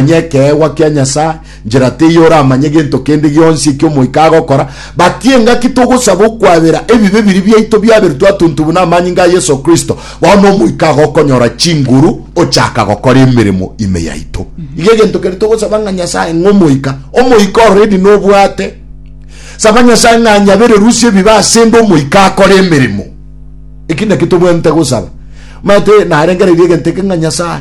bamanye ekeegwa kia Nyasae, njera teiyo oramanye gento kende gionsi ekio Omoika agokora. But engaki togosaba okwabera ebibe biria biaito biaberetwe atuntu buna amanyinga a Yeso Kristo, bono Omoika agokonyora chinguru ochaka gokora emeremo ime yaito. Iga egento keria togosaba ng'a Nyasae ng'a Omoika, Omoika already nobwate. Saba Nyasae ng'a anyabererusie ebibe asende Omoika akore emeremo. Eki naki tobwenerete gosaba. Omanyete narengereirie egento eke ng'a Nyasae,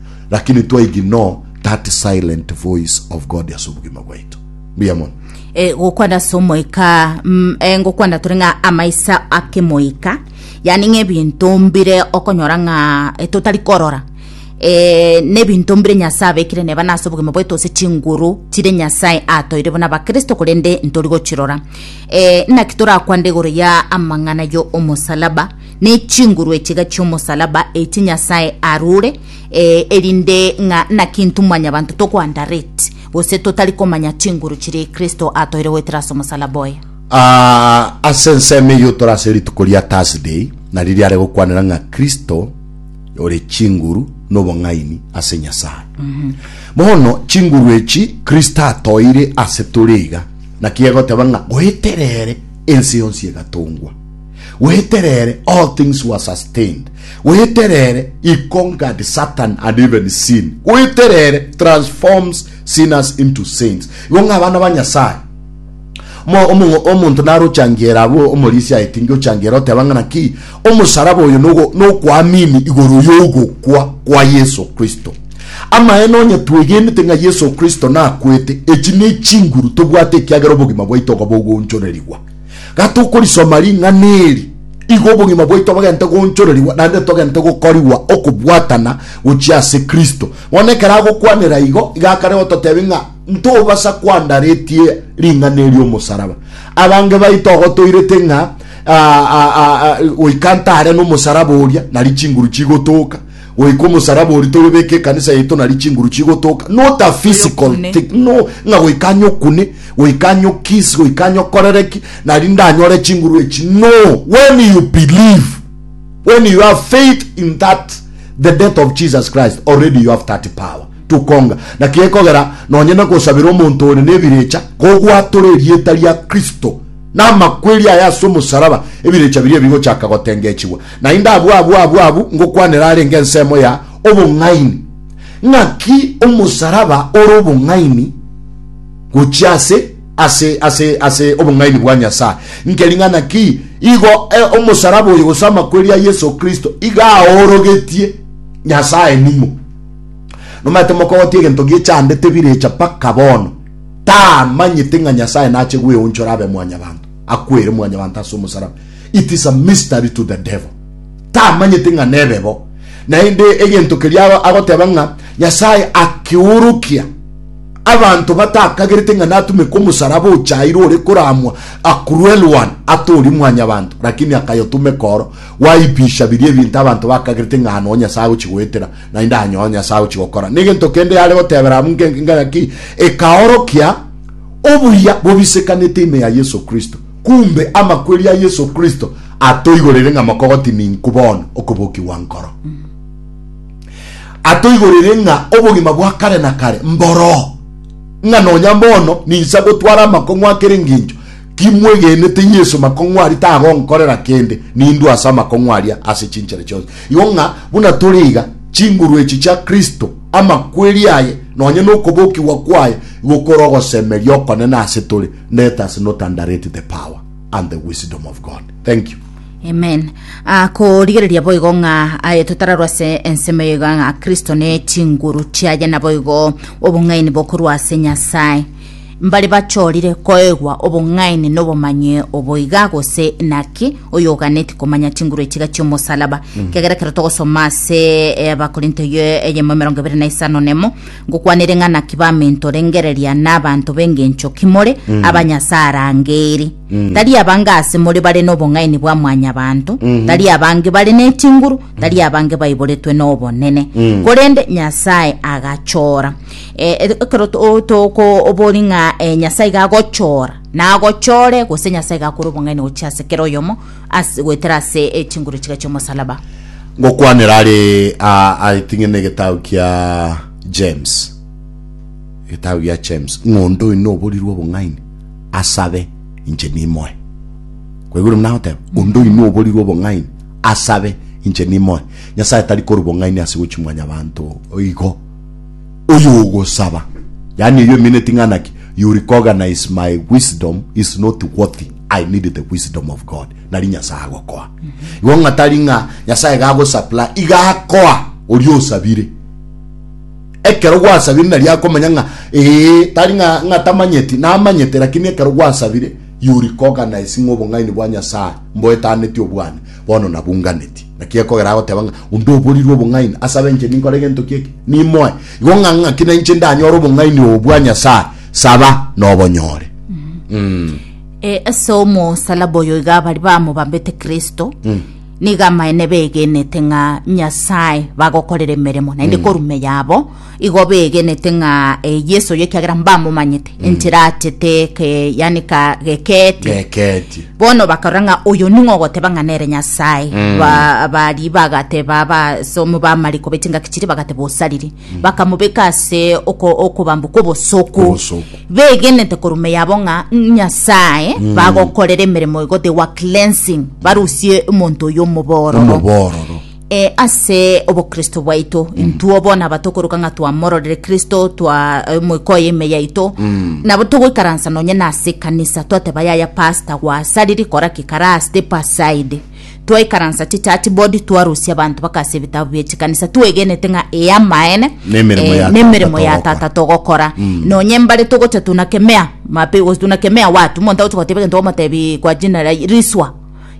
Lakini to ignore that silent voice of God ase obogima bwaito. Mbuya mono. e, gokwana ase omoika mm, e, ngokwana tore ng'a amaisa akemoika yani ng'a ebinto mbire okonyora ng'a e, totari korora e, nebinto mbire nyasae abekire neba nase obogima bwaito ase chinguru chire nyasae atoire buna bakristo korende ntori gochirora e, naki torakwane igoro ya amang'ana yo omosalaba ne chinguru echiga chi'omosalaba echi Nyasae arure, ee, erinde ng'a naki intwe mwanyabanto toko-underrate, gose totari komanya chinguru chiria Kristo atoire goetera ase omosalaba oye. Aa, ase ensemo eyio tore ase rituko ria Thursday, nario riare gokwanera ng'a Kristo ore chinguru nobong'aini ase Nyasae. Bono, chinguru echi Kristo atoire ase tore iga, naki egoteba ng'a goetera ere ense yonsi egatongwa. Weterere, all things were sustained. Weterere, he conquered Satan and even sin. Weterere transforms sinners into saints. Igo ng'a abana ba Nyasaye, Mo- omo- omonto naro ochangiera abwo omorisia aeti nge ochangiera oteba ng'a naki omosaraba oyo nogo- nokwamini igoro y'ogokwa kwa Yeso Kristo. Amaene onye twegenete ng'a Yeso Kristo nakwete, echi ne chinguru tobwate ekiagera obogima bwaito iga bogoonchorerigwa. Gatokorisoma ring'ana eri, igo obogima bwaito bogente goonchorerigwa naende togente gokorigwa okobwatana gochia ase Kristo. Bono ekero agokwanera igo, iga akare gototebia ng'a ntobasa kwandaretie ring'ana eri omosaraba. Abange baito ogo toirete ng'a goika ntare nomosaraba oria, nari chinguru chigotooka. Goika omosaraba oria toyobeke ekanisa yaito nari chinguru chigotoka not a physical thing no ng'a goika anyokune goika anyokiss goika anyokorereki nari ndanyore chinguru echi no when you believe when you have faith in that the death of Jesus Christ already you have that power tukonga na kiekogera nonye na gosabira omonto ore nebirecha kogwatora erieta ria Kristo na amakweri aya ase omosaraba ebirecha biria ebigochaka gotengechigwa Naende abwo abwo abwo abwo ngokwanera arenge ensemo ya obong'aini. Ng'aki omosaraba ore obong'aini gochia ase ase ase ase obong'aini bwa Nyasae? Inki ring'ana ki igo e, omosaraba oyo gose amakweri a Yeso Kristo iga aorogetie Nyasae ning'o? Nomaete mokogotia egento gie chande tebirecha mpaka bono tamanyete ng'a Nyasae nache gweonchora abe mwanyabanto, akwere mwanyabanto ase omosaraba. It is a mystery to the devil. Tamanyete ng'a nebe bo. Naende egento keria agoteba ng'a Nyasae akeorokia abanto batakagerete ng'a natumeke omosalaba ochairwe ore koramwa a cruel one atori mwanyabanto lakini akayotumeka oro gwaipisha biria ebinto abanto bakagerete ng'a ano Nyasae agochi goetera naende anyo Nyasae agochi gokora. Negento kende yare gotebera abwo ngaki ekaorokia obuya bobisekanete ime ya Yesu Kristo. Kumbe amakweri a Yeso Kristo atoigoreire ng'a mokogoti ninku bono okobokigwa nkoro. Atoigoreire ng'a obogima bwa kare na kare mboroo, ng'a nonya bono ninsa gotwara amakong'u akere ngencho kimwegenete Yeso makong'u aria tagonkorera kende, nindue ase amakong'u aria ase chinchera chionsi. Igo ng'a buna tore iga, chinguru echi chia Kristo, amakweri aye, nonya nokobokigwa kwaye, igo kore ogosemeria okonene ase tore. Let us not underrate the power and the wisdom of God. Thank you. Amen. Ah, korigereria boigo ng'a aye totararwa ase ensemo eye iga ng'a Kristo ne chinguru chiaye na boigo obong'aini bokorwa ase Nyasae. Mbare bachorire koegwa obong'aini na obomanyi oboiga gose naki oyo oganeti komanya chinguru echiga chiomosalaba. Kiagera ekero togosoma ase eh, Abakorinto ye- eyemo emerongo ebere na isano nemo Ngokwanere ng'a naki bamentorengereria n'abanto b'engencho ki more, abanyase arangeiri. Tari abange ase more bare n'obong'aini bwa mwanyabanto, tari abange bare ne chinguru, tari abange baiboretwe n'obonene, korende Nyasae agachora. Eh, ekero to- tokobori ng'a eh, Nyasae iga agochora, nagochore, gose Nyasae iga akore obong'aini gochia ase kera oyomo, Ase goetera ase chinguru chiga chi'omosalaba. Ngokwanera are aa ating'ene egetabu kia James, egetabu gia James, ng'onda oino oborirwe obong'aini asabe, inche nimoe. Kwaigure buna agoteba? Onde oino oborirwe obong'aini asabe, inche nimoe. Nyasae tari korwa bong'aini ase gochia mwanyabanto igo. Oyo ogosaba, yaani eyio emineti ng'ana ki, you recognize my wisdom is not worthy. I need the wisdom of God nari Nyasae agokoa igo ng'a tari ng'a Nyasae gagosupply iga akoa oria osabire ekero gwasabire nari akomanya ng'a ee tari ng'a ng'a tamanyeti namanyete lakini ekero gwasabire you recognize ng'a obong'aini bwa Nyasae mboetaneti obwane bono nabunganeti naki ekogera agoteba ng'a onde oborirwe obong'aini asabe inche ninkore egento kieke nimoe igo ng'a ng'aki na inche ndanyore obong'aini obo bwa Nyasae Saba, nobonyore. Mm. E, ase omosalaba oyo iga bari bamobambete Kristo nigo amaene begenete ng'a Nyasae bagokorera emeremo naende korume yabo igo begenete ng'a e, Yeso oyo ekiagera mbamomanyete enchera achete ke, yani ka gekeetie Geketie. bono bakarora ng'a oyo ning'o ogoteba ng'a nere nyasae Ba- bari bagateba basomo bamariko bechingaki chiri bagateba osariri bakamobeka ase oko- okobambwa kw'obosoku Obosoku. begenete koruma yabo ng'a nyasae bagokorera emeremo igo they were cleansing barusie omonto oyo omobororo omobororo Eh, ase obokristo bwaito intwo bono abatokoruka ng'a twamororire kristo twa eh, moika oye ime yaito nabo togoikaransa nonye nase ekanisa twateba yaya pasta gwasariri kora ki kara step aside twaikaransa chichurch board twarusia abanto bakasia ebitabu bie chikanisa twegenete ng'a eye amaene Nemeremo eh, ya nemeremo Tata ya togokora. tata togokora nonye mbare togocha tunakemea mape gosi tunakemea watu monto agocha goteba egento omotebi kwa jina la riswa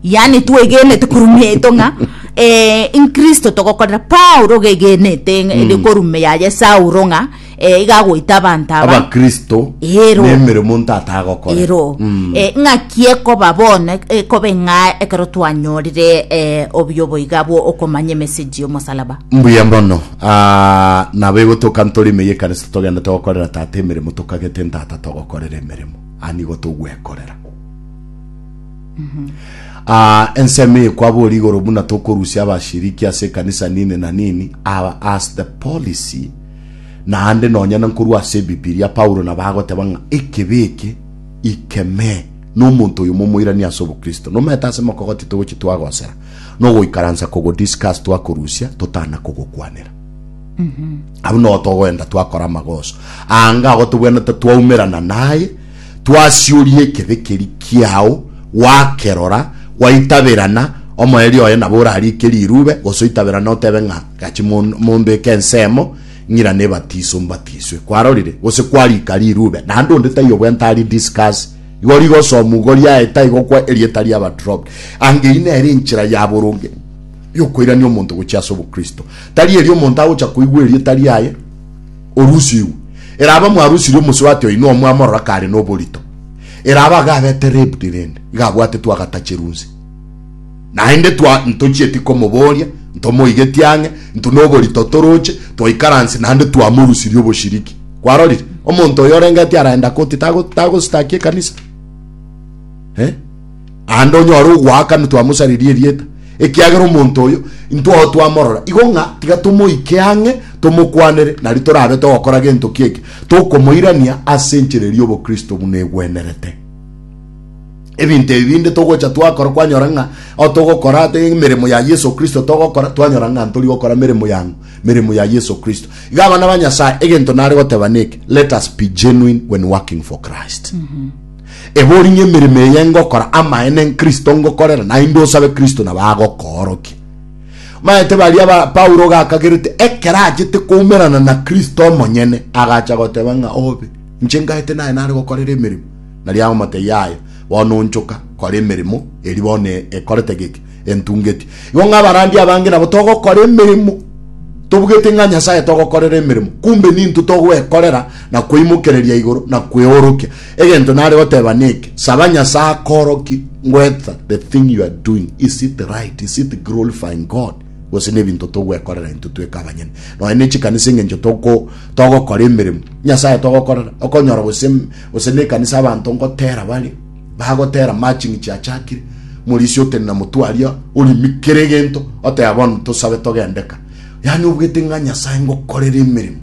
yaani twegenete korumia eto ng'a eh, inkristo togokorera paulo ogegenete mm. korumia yaye saulo ng'a eh, iga agoita abanto aba abakristo Ero. nemeremo ntata agokora ero Mm. eh, ng'aki ekoba bono eh, ekobe ng'a ekero twanyorire eh, obuya oboiga bwo okomanya emesegi y'omosalaba mbuya mono Ah, nabo egotoka ntore ime yekanisa togenda togokorera tata emeremo tokagete ntata togokorera emeremo anigo togwekorera Ah, ensemo eye kwabori igoro buna tokorusia abashiriki ase ekanisa nini na nini ah, as the policy Naende nonya na nkorwa ase Ebibilia, Paulo nabo agoteba ng'a ekebi eke ikeme nomonto oyo momoirani ase obokristo. Nomanyete ase mokogoti togochi twagosera nogoikaransa kogodiscuss twakorusia totana kogokwanera. Abwo nogo togoenda twakora amagoso. Anga agotobwenete twaumerana naye Twasioria ekebekeri kiao, gwakerora, gwaitaberana, omoerio oye nabo orariike rirube, gose oitaberane otebe ng'a, Gachi mombeke ensemo, ng'irane ebatiso, mbatiswe. Kwarorire? Gose kwariika rirube, naende onde taiyo bwenta ari discuss. Igo rigosomu, igo riaeta, igokwa, erieta riaba dropped. Anga eyio nere enchera ya boronge yokoirania omonto gochia ase obokristo. Tari erio omonto agocha koigwa erieta riaye. orusigwe, eraba mwarusirie omosubati oino omwe amorora kare noborito, eraba iga abete ribbed rende iga abwate twagatacheru nse. Naende twa ntochieti komoboria, ntomoigetie ang'e, nto noborito toroche, twaikaranse naende twamorusirie oboshiriki. Kwarorire? Omonto oyo orengeti araenda koti tago tagostaki ekanisa? Eh? aande onyore ogoakana twamosaririe erieta, ekiagera omonto oyo intwao twamorora, igo ng'a tiga tomoike ang'e tomokwanere, nari torabe togokora gento ki'eke tokomoirania ase enchera eria y'obokristo buna egwenerete. Ebinto ebi binde togocha twakora kwanyora ng'a ao togokora ate emeremo ya Yeso Kristo togokora twanyora ng'a ntori gokora meremo yang'o, meremo ya Yeso Kristo. Iga abana ba Nyasae egento nare goteba neke, let us be genuine when working for Christ. Ebori ng'a emeremo eye ngokora amaene nkristo ngokorera, naende osabe Kristo nabo agokoorokia. Maete baria ba Paulo gakagerete ekero achete koumerana na Kristo omonyene, agacha goteba ng'a obe, inche ngaete naye nare gokorera emeremo. Nario agomotebia, Yaya, bono onchoka, kora emeremo eri bono ekorete geke. entungeti. Igo ng'a abarandia abange nabo togokora emeremo, tobugete ng'a Nyasae togokorera emeremo, kumbe nintwe togwekorera na kweimokereria igoro na kweorokia. Egento nare goteba neke, saba Nyasae akoorokie whether the thing you are doing is it right, is it glorifying God, gose nebinto togwekorera intwe tweka abanyene. Nonya ne chikanisa eng'encho toko togokora emeremo, Nyasae togokorera, okonyora gose gose nekanisa abanto ngotera bare Bagotera matching chiachakire, Morisia otenena motwe aria orimi kera egento, oteba bono tosabe togendeka. Yani obwete ng'a Nyasae ngokorere emeremo.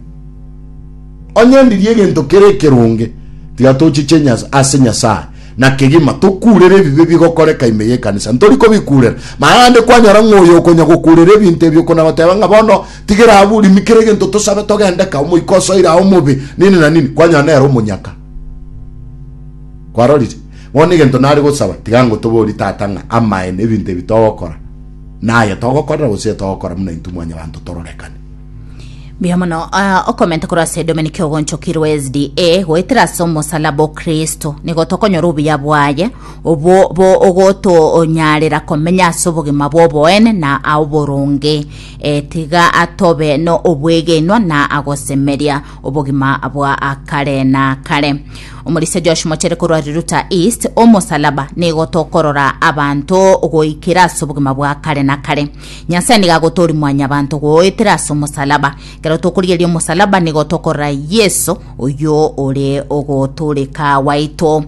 Onye ndirie egento kera ekeronge, tiga tochiche ase Nyasae na kegima tokurere ebibe bigokoreka ime y'ekanisa. Ntori kobikurera. Naende kwanyora ng'a oyo okonya gokurera ebinto ebi okona goteba ng'a bono tigera abwo orimi kera egento tosabe togendeka, omoika osoire ao omobe, nini na nini, kwanyora nere omonyaka. Kwarorire? Bono egento nare gosaba, tiga ngotoborie, Tata, ng'a amaene ebinto ebi togokora, naye togokorera gose etogokora buna intwe mwanyabanto tororekane. Mbuya mono ah, okomenta korwa ase Dominic ogonchokirwe SDA goetera ase omosalaba o Kristo. Nigo tokonyora obuya bwaye, obwo bo ogotonyarera komenya ase obogima bw'oboene na aoboronge. Eh, tiga atobe no obwegenwa na agosemeria. obogima bwa akare na akare omorisia josh mochere korwa riruta east omosalaba nigo tokorora abanto goikera ase obogima bwa akare na akare nyasaye nigo agotori mwanyabanto goetera ase omosalaba kero tokorigeria omosalaba nigo tokorora yeso oyo ore ogotoreka waito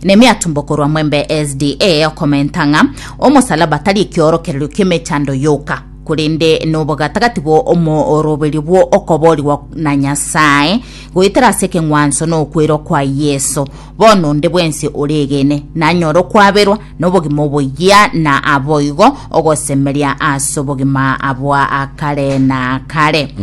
nemi atumbo korwa mwembe sda okomenta ng'a omosalaba tari ekiorokererio ki'emechando yoka korende nobogatagati bwa omoroberio bw'okoboorigwa na Nyasae, goetera ase ekeng'wanso na okwera kwa Yeso. Bono onde bwensi oregene nanyore okwaberwa nobogima oboyia na aboigo ogosemeria ase obogima bwa kare na kare.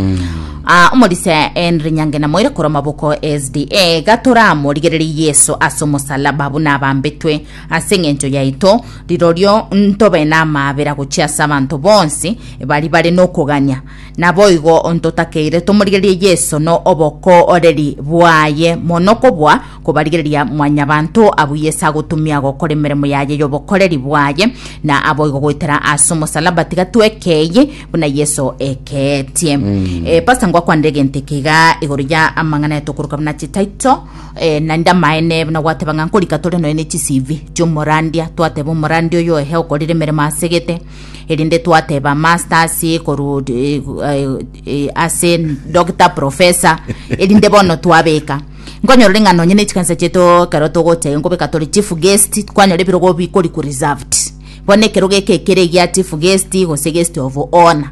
Ah, omorisia Henry Nyange namoire korwa maboko SDA gatoramorigererie Yeso ase omosalaba buna abambetwe Ase engencho yaito, rirorio ntobe namaabera gochia ase abanto bonsi baria bare nokogania. Naboigo ntotakeire tomorigererie Yeso na obokooreri bwaye mono kobua kobarigereria Mwanyabanto abwo Yeso agotumia gokora emeremo yaye y'obokoreri bwaye, na aboigo goetera ase omosalaba. Tiga twekeiye buna Yeso ekeetie. Eh, Pastor, ngwakwanera egento eke iga igoro ya amang'ana aya tokoroka buna chitaito. Eh, naende amaene buna gwateba ng'a nkorika tore nonya ne chisivi chiomorandia twateba omorandia oyo ehe okorire emeremo asegete erinde twateba masters koru eh, eh, ase doctor professor erinde bono twabeka nkonyorore ng'a nonya ne chikanisa chieto ekero togocha iga nkobeka tore chief guest kwanyora ebirogo bikori ku reserved bono ekerogo eke ekere egia chief guest gose guest of honor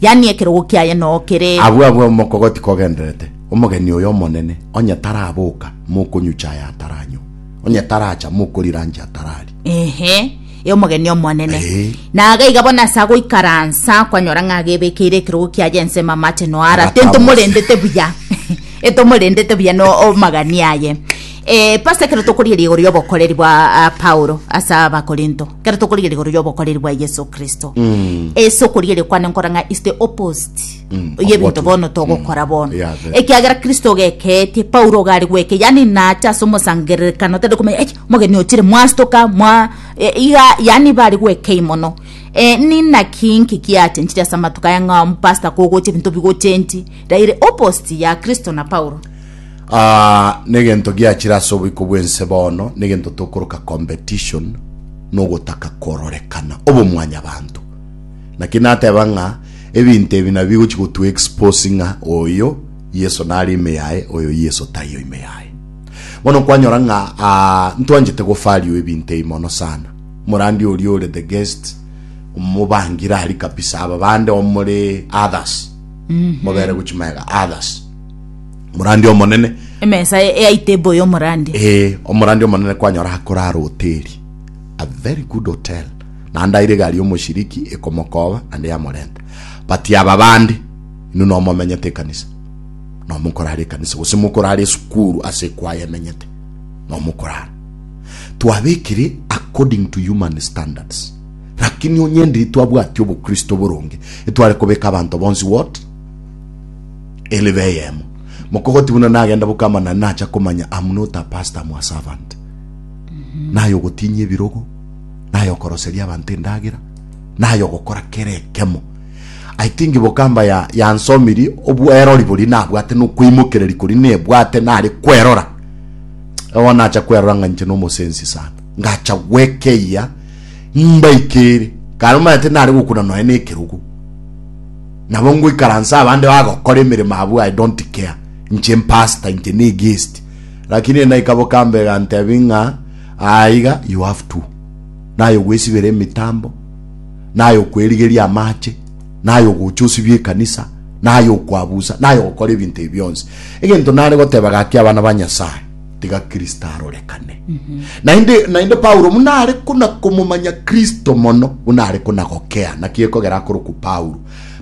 yaani ekerogo kiaye noo kere. Agwo agwo omokogoti kogendererete, omogeni oyo omonene, onye taraboka, mokonyucha aye ataranywa, onye taracha, mokorira anche atarari. Ehe, e omogeni omonene. Ee. Na aga iga bono ase agoikaransa, kwanyora ng'a agebekeire ekerogo kiaye ensemo amache noo ara, Agatamosia. tintomorendete buya, etomorendete buya no omagania aye. Eh, Pastor, ekero tokorieria igoro y'obokoreri bwa ah, Paulo ase Abakorinto, Ekero tokorigereria igoro y'obokoreri bwa Yeso Kristo, ase okorigereria kwane nkora ng'a is the opposite Mm, of y'ebinto what we- bono togokora bono. Yeah, very. Ekiagera Kristo ogekeetie, Paulo iga are gweke, yaani nacha ase omosangererekano tari komanya, eish, omogeni ochire, mwastoka, mwa... e, iga, yaani iba are gwekei mono. Eh, ninaki inki kiachenchire ase amatuko aya ng'a omopastor kogocha ebinto bigochenchi, raire opposite ya Kristo na Paulo? Ah, negento giachire ase oboiko bwense bono, negento tokoroka competition, nogotaka kororekana, obomwanyabanto. Naki nateba ng'a ebinto ebi nabio bigochi gotu expose ng'a oyo Yeso nare ime yaye, oyo Yeso taiyo ime yaye. Bono kwanyora ng'a ah, ntwanchete gofaliwa ebinto ebi mono sana. Morandi oria ore the guest, omobangire ari kabisa, aba bande omore others, mobere gochi maega others. Omorandi omonene. Emesa ya itebo y'omorandi. Ee, omorandi omonene kwanyora akorara hoteri. A very good hotel. Naende aire egari y'omoshiriki ekomokoba naende yamorenta. But aba bande, inwe nomomenyete ekanisa. Nomokorara ekanisa gose mokorara esukuru ase ekwaya emenyete. Nomokorara. Twabekire according to human standards. Lakini onye ndiri twabwati obokristo boronge, etware kobeka abanto bonsi what? Elebe eyemo, mokogoti buna nagenda boka amanani nacha komanya I'm not a pastor, I'm a servant. Naye ogotinyia ebirogo, naye okoroseria abanto endagera, naye ogokora kera ekemo. I think bokamba ya yansomiri obwerori bori nabwate nokoimokereri kori nebwate nare kwerora. Ewa nacha kwerora ng'a inche nomosensi sana. Ngacha gwekeyia mbaikere. Kare omanyete nare gokuna nonya nekerogo. Nabo ngoikaransa abande bagokora emeremo abwo I don't care. Inche mpastor inche ne guest. Lakini ere naika bokamba egantebi ng'a aa iga you have to. Naye ogwesibera emitambo, naye okwerigeria amache, naye ogocha osibie ekanisa, naye okwabusa, naye ogokora ebinto ebi bionsi. Egento nare goteba gaki abana ba Nyasae, tiga Kristo arorekane. Naende, naende Paulo buna are kona komomanya Kristo mono, buna are kona gokea. Naki ekogera akorokwa Paulo.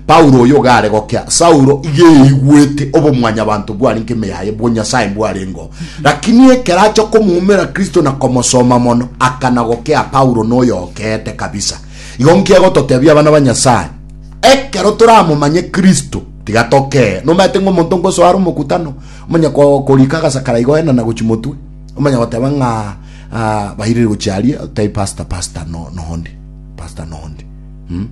Paulo oyo iga are gokea, Saulo iga eiguete obomwanyabanto bware nk'eme yaye, bw'Onyasae mbwarengeo. Lakini ekero acha komoumera Kristo na komosoma mono, akana gokea Paulo noyo okeete kabisa. Igo nki egototebia abana ba Nyasae? Ekero toramomanye Kristo, tiga tokee. Nomaete ng'a omonto ngosoa are omokutano, Omanye ko- korika agasakara igo ena na gochi motwe. Omanye goteba ng'a ah, bairire gochi aria, otebi pastor, pastor no, nondi, pastor nondi. Mm.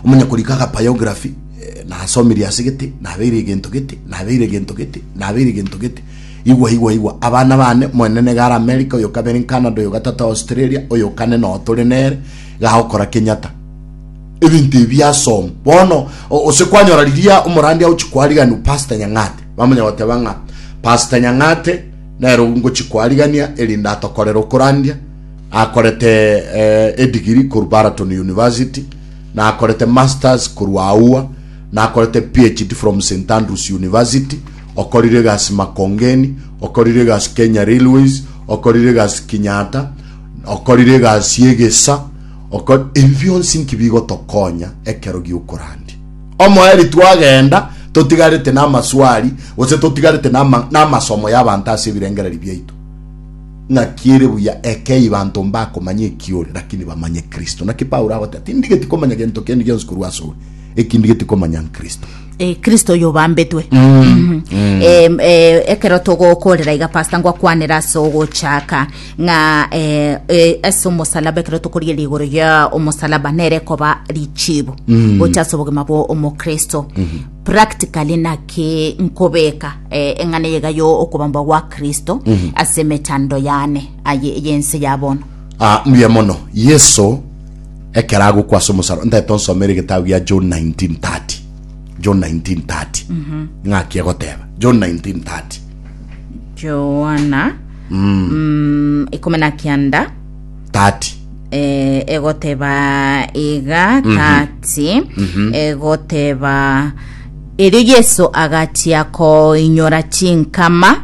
Omanye korika aga biography, eh, nasomirie ase gete, nabeire egento gete, nabeire egento gete, nabeire egento gete. Igwa igwa igwa, abana bane, omonene niga are America, oyo kabere Canada, oyo gatato Australia, oyo kane noo tore nere, iga agokora Kenyatta. ebinto ebi biasom bono ose kwanyora riria omorandi agochi kwariganu pastor nyang'ate bamanya goteba ng'a pastor nyang'ate nero ngochi kwarigania erinde atokorera okorandia akorete eh, edigiri koru baraton university na akorete masters koru aua na akorete phd from st andrews university okorire gasi makongeni okorire gasi kenya railways okorire gasi kinyata okorire gasi egesa Okore ebi bionsi inki bigotokonya ekero gi'okorandia omoeri twagenda totigarete namaswali gose totigarete nama, namasomo y'abanto ase ebirengererio biaito. Ng'aki ere buya ekei banto mbakomanya eki ore, lakini bamanye Kristo. Naki Paulo agoteba, tindigeti komanya gento kende gionsi korwa ase ore, eki ndigeti komanya n'Kristo. Eh, kristo oyo obambetwe Mhm. Em, eh, ekero togokorera iga pastor ngwakwanera ase ogochaka ng'a eh, eh, ase omosalaba ekero tokorigeria igoro ya omosalaba nere koba richibo mm. gocha ase obogima bwa omokristo mm -hmm. practically naki nkobeka eh, eng'ana yega yo okobambwa gwa kristo mm -hmm. ase emechando yane aye yense yabono ah, mbuya mono yeso ekero agokwa ase omosalaba ntaete onsomere egetabu gia john 1930 john 1930 mm -hmm. ng'aki egoteba john 1930 joana Mm. mm, ikomi na kianda 30. eh, egoteba iga tati Mhm. egoteba erio yesu agachia koinyora chinkama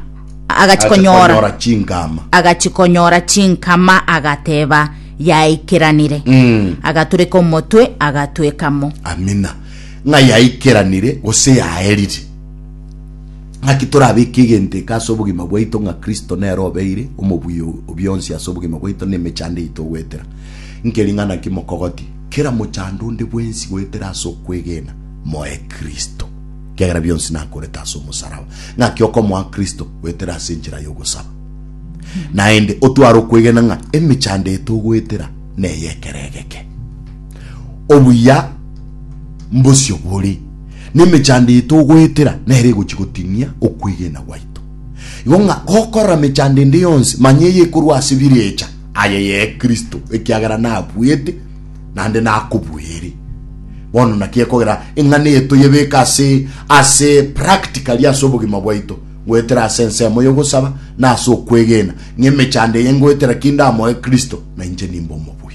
agachikonyora Achikonyora chingama. agachikonyora chinkama agateba yaikeranire Mm. agatureka omotwe agatwekamo Amina. Ng'a yaikeranire gose yaerire. Naki torabeke egento eke ase obogima bwaito ng'a Kristo nere obeire omobuya o bionsi ase obogima bwaito na emechando yaito goetera nkeri ng'a naki mokogoti kera mochando onde bwensi goetera ase okwegena moe Kristo, ekiagera bionsi nakorete ase omosaraba. Ng'aki okomoa Kristo goetera ase enchera y'ogosaba. Naende otware okwegena ng'a emechando yaito ogoetera neye ekero egeke. Obuya mbosio bore Nemechando eye togoetera nere egochia gotinia okwegena gwaito. Igo ng'a gokorora mechando ende yonsi, manya eye ekorwa ase birecha, aye ye Kristo, ekiagera nabuete, naende nakobuere. Bono naki ekogera eng'ana eye toyebeke ase ase practically ase obogima bwaito, goetera ase ensemo y'ogosaba na ase okwegena, ng'a emechando eye ngoetera ki ndamoe Kristo, na inche nimbe omobui.